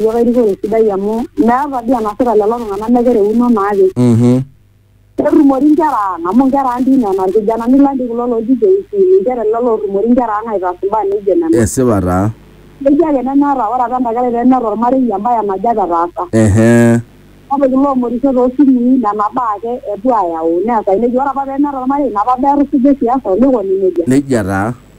iyiok erikore sidai amu meeta dii enasita lelo tung'anak mekereuno naake Mhm. ketumori inkera ang amu inkera ang dii nena irkijanani lang dii kulo looji JC ninche lelo lootumori inkera ang aitaas imbaa neijo nena Esipa taa. neji ake nemeeta ore apa enda kerai pemeeta ormarei embaye naje apa etaasa Ehe. kake kulo oomorisho toosimui nena baa ake epuo aayau neesai nejia ore apa pemeeta ormarei ina apa baa etusuja e siasa olikoni nejia Nejia taa.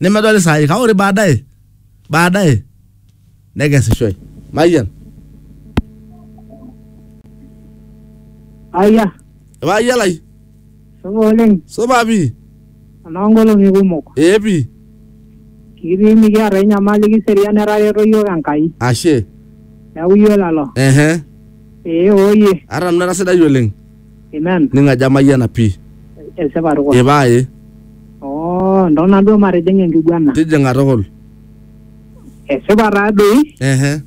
nemedoli saai kake ore baadaye baadaye nekesishoe mayian Aya, ipaayia lai supa oleng, supa pii anaa nkolong'i kumok. ee pii Kitii mikiata enyamali kiserian etareto iyiook Enkai. ashe Neeku iyiolalo. ehe Ee ooyie. ata nanu era sidai oleng Amen. ning'aja amayiana pii Esipa tukul. ipa ae Oh, ntona duo matijing enkiguana. tijing'a tukul Esipa taa doi ehe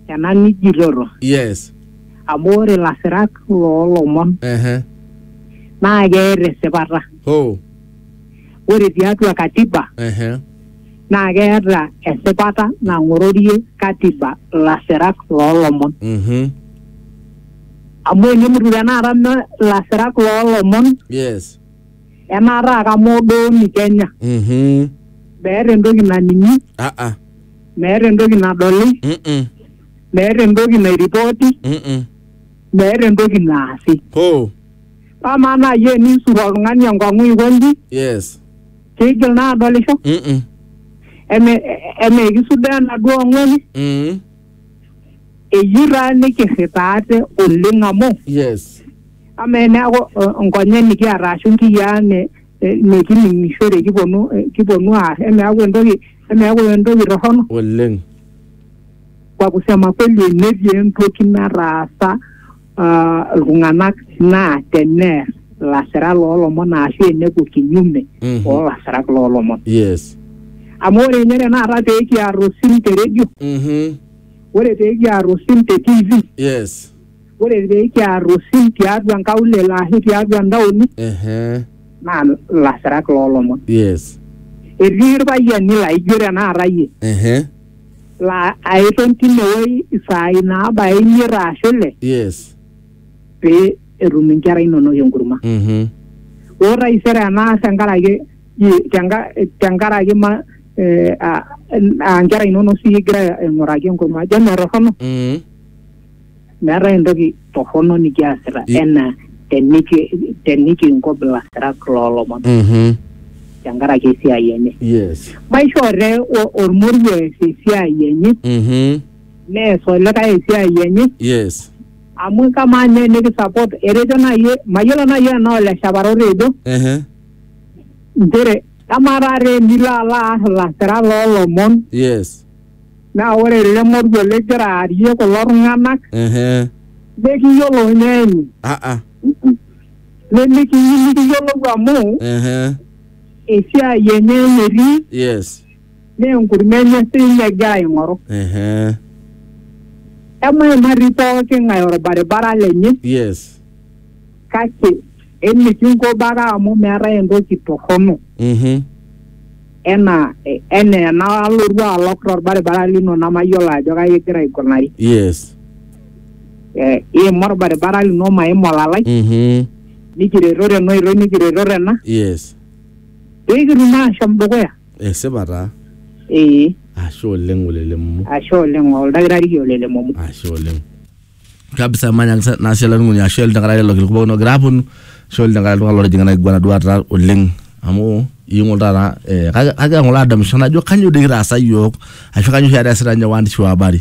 ena nijitoto. yes Amu ore ilasirak loolomon ehe naa keeta esipata. ho Ore tiatua katiba ehe naa keeta esipata nang'ororie katiba ilasirak loolomon. mhm amu enemutu tenakata me ilasirak loolomon yes enaa taata moodooni Kenya mhm meeta entoki naning'i ah ah meeta entoki nadoli mm meeta entoki nairipoti mm meeta entoki naasi ho amaa naaji eniisur oltung'ani enkong'u aikonji yes keigil naa adolisho mm eme eme ekisudoo enaduo ong'ueni mm eyirani kirripaate oleng amu yes amaa eneeku eh, nkonyek nikiata ashu nkiyiaa ne- eh, nikining'ishore kiponu eh, kiponu aar emeeku entoki emeeku entoki torrono oleng kwa kusema kweli netii entoki nataasa uh, iltung'anak naa teneer ilasirak loolomon ashu enepuo kinyume Mhm. oolasirak loolomon yes amu ore ninye tenakata pee kiar osim te redio Mhm. ore pee kiar osim te tv yes ore pee kiar osim tiatua nkaulele ashu tiatua ntaoni Ehe. naa ilasirak loolomon yes etii irpayiani laijo tenakata iyie Ehe. laa aiton tine wueji isaai naabaya imiet aashu ile yes pee etum inkera inonok enkurma. mhm Ore taisere enaas tenkaraki i- tenka- tenkaraki ma eh, ah, ah, inkera inonok sii igira aing'uraki enkurma, ajo metorrono? mhm Meetae entoki torrono nikiasita I- enaa teniki tenikinko bilasirak loolomon Mhm. tenkaraki esiai enye. Yes. Maishoo te o- ormoruo ees esiai enye Mhm. nees olikae esiai enye Yes. amu kamaa ninye nikisupport etejo naaji mayiolo naaji enaa ole Shaparo otejo Ehe. nchere kamaa taata enilo alo aar ilasirak loolomon Yes. naa ore ele moruo ligira aarie kulo tung'anak Ehe. nikiyiolo ninye enyi Ah, ah. nimikiyieu nikiyiolou amu Ehe. esiai enye enye etii Yes. naa enkurma enye siininye egira aing'oru Ehe. emaimari pooki ng'ae orbaribara lenye Yes. kake emikinko baka amu meetae entoki torrono Mhm. enaa eh, enaa enalotu alok torbaribara lino namayiolo ajo kai igira aikunari Yes. eh, iima orbaribara lino maima olalai Mhm. nikireto tena oitoi nikireto tena Yes. pikitum ashom dukuya Esipa taa. ee Ashe oleng olelemumu. ashe oleng oldakitari olelemomu Ashe oleng. kabisa manya ngisa- nasi ala nunguni ashu ele tenkaraki lelo kilikuwa kuno gira aponu ashu ele tenkaraki iltung'anak lotijing'a ina kiguana duo taata oleng amu ing'ol taata eh, kake- kake ng'ole adamisho najo kanyo doi kitaasa yiok ashu kanyo oshi taata easita ninye waandishi wa habari